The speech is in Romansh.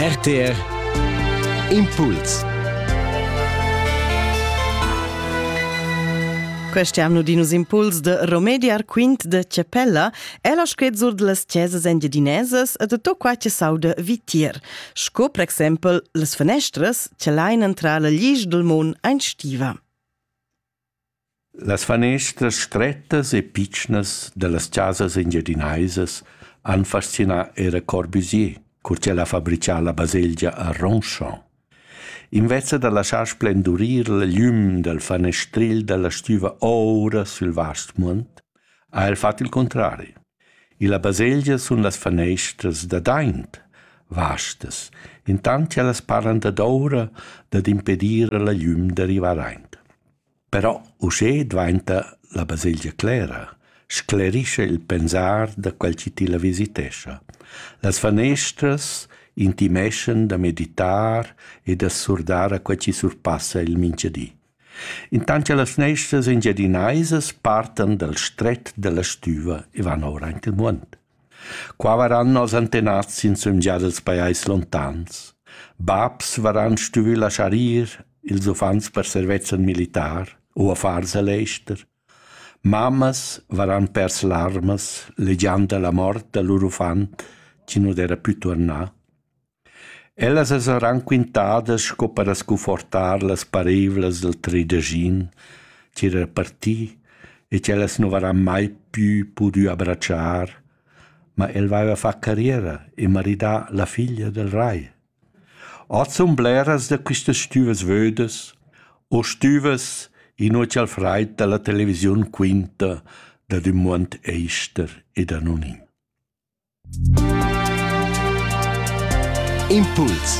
RTR Impuls Questi anno dinus impuls de Romediar quint de Cepella è la squezur de las chesas engiadinesas e de to qua che saude vitier, sco per exempel les fenestras che lain entrar la lisch del mon ein stiva. Las fanestras strettas e pitschnas dallas chasas engiadinaisas han fascinà era Corbusier, cur ch'el ha fabrichà la baselgia a Ronchamp. Inveza da laschar splendurir la gliüm dal fanestril dalla stüva oura sül vast muond, ha el fat il cuntrari. Illa baselgia sun las fanestras dad aint vastas, intant cha las paran dadoura dad impedir a la gliüm da rivar aint. Però uschè dvainta la baselgia clera, sclerischa il pensar da quel chi tilla visitescha. Las fanestras intimeschan da meditar e da surdar a quel chi surpassa il minchadi. Intant che las fneistras engiadinaisas partan dal stret dalla stüva e van ora aint il muond. Qua varan nos antenats insumgia dels pajais lontans. Babs varan stuvü laschar ir, ils uffants per servezzan militar u affars a l'ester. Mammas varan pers larmas, legiand la mort da lur uffant, chi nu d'era pü tuornà. Ellas as eran quintadas sco per scunfortar las pareivlas dal trideschin chi era parti e ch'ellas nu varan mai pü pudü abratschar, ma el vaiva fat carriera e maridà la figlia dal rai. Hoz sun bleras da quistas stüvas vödas o stüvas, inua cha'l fraid da la televisiun quinta dad ün muond ester e da non in. Impuls